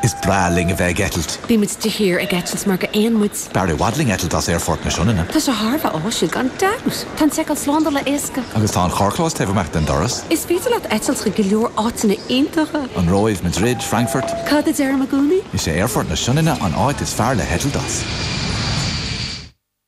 Is breá linn a bheith ag eitilt. Bímid de shíor ag eitilt mar go aon muid. B'fhearr i bhfad linn eitilt as Aerfort na Sionainne. Tá sé thar a bheith áisiúil, gan dabht! Tá an seiceáil slándála éasca. Agus tá an carrchlós taobh amach den doras. Is féidir leat eitilt chuig go leor áiteanna iontacha. An Róimh, Madrid, Frankfurt. Cad a deirim i gcónaí? Is é Aerfort na Sionainne an áit is fearr le heitilt as.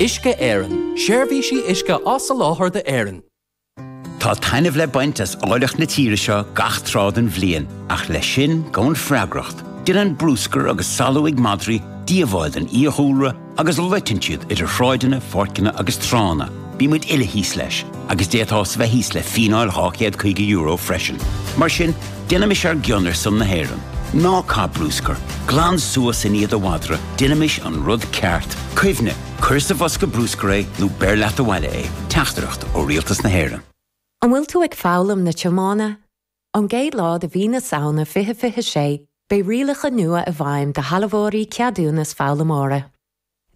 Uisce Éireann, Seirbhísí uisce á soláthar d'Éirinn. Tá taitneamh le baint as áilleacht na tíre seo gach tráth den bhliain, ach leis sin, gabhann freagracht. Déanann brúscar agus salú ag madraí díobháil don fhiadhúlra agus loiteann siad idir shráideanna, pháirceanna agus tránna. Bímid uile thíos leis. agus d'fhéadfás bheith thíos le fíneáil €250 freisin. Mar sin, déanaimis ár gcion ar son na hÉireann. Ná caith brúscar, glan suas i ndiaidh do mhadra, déanaimis an rud ceart. Cuimhnigh, cuir sa bhosca brúscair é nó beir leat abhaile é. Teachtaireacht ó Rialtas na hÉireann. An bhfuil tú ag foghlaim na tiomána? Ón gcéad lá de mhí na Samhna 2026, beidh rialacha nua i bhfeidhm do shealbhóirí ceadúnas foghlaimeora.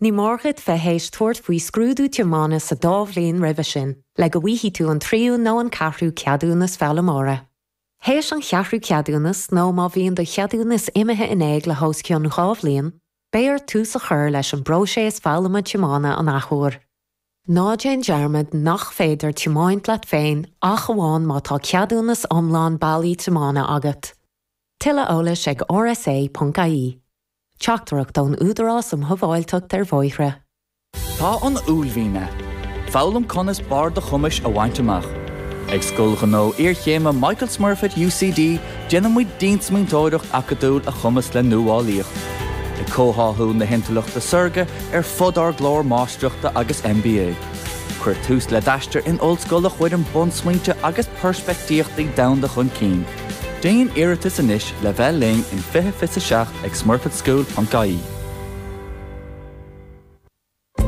Ní mór dhuit bheith théis tabhairt faoi scrúdú tiomána sa dá bhliain roimhe sin le go bhfaighidh tú an tríú nó an ceathrú ceadúnas foghlaimeora. Théis an cheathrú ceadúnas nó má bhíonn do cheadúnas imithe in éag le hós cionn dhá bhliain, beidh ort tús a chur leis an bpróiséas foghlama tiomána an athuair. Ná déan dearmad nach féidir tiomáint leat féin ach amháin má tá ceadúnas iomlán bailí tiomána agat. Tuilleadh eolais ag rsa.ie. Teachtaireacht ón Údarás um Shábháilteacht ar Bhóithre. Tá an uaillmhian agat. Foghlaim conas barr do chumais a bhaint amach. Ag Scoil Ghnó Iarchéime Michael Smurfit UCD déanaimid diansmaointeoireacht acadúil a chumasc le nuálaíocht, ag comhtháthú na hIntleachta Saorga ar fud ár gclár Máistreachta agus MBA. Cuir tús le d'aistear in ollscoil a chuireann bunsmaointe agus peirspeictíochtaí domhanda chun cinn. Déan iarratas anois le bheith linn in 20 fiche 7 ag smurfitschool.ie.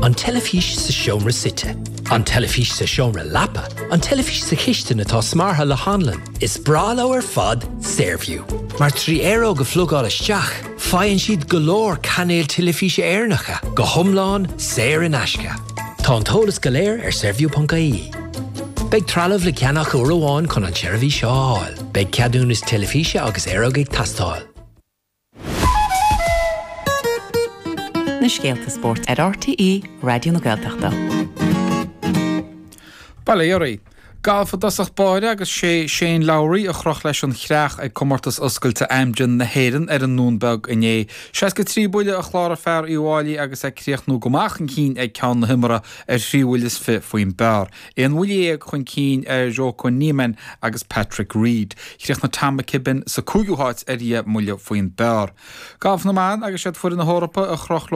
An teilifís sa seomra suite. An teilifís sa seomra leapa. An teilifís sa chistin atá smeartha le hanlann. Is breá leo ar fad Saorview. Mar trí aeróg a phlugáil isteach, Faigheann siad go leor cainéil teilifíse Éireannacha go hiomlán saor in aisce. Tá an t-eolas go léir ar saorview.ie. Beidh trealamh le ceannach uair amháin chun an tseirbhís seo a fháil. Beidh ceadúnas teilifíse agus aeróg ag teastáil. na scéalta spóirt ar RTÉ Raidió na Gaeltachta. Balearí. Galf i dtosach báire agus is é Shane Lowry a chroch leis an chreach ag Comórtas Oscailte Amgen na hÉireann ar an nDún Beag inné. Seasca trí buille a chláraigh fear Uíbh Fháilí agus é ag críochnú go maith chun cinn ag ceann na himeartha ar thrí bhuille is fiche faoin bpar, aon bhuille dhéag chun cinn ar Joaquin Niemann agus Patrick Reed. Chríochnaigh Tom McKibbin sa cúigiú háit ar dheich mbuille faoin bpar. Galf na mBan agus is iad foireann na hEorpa a chroch leo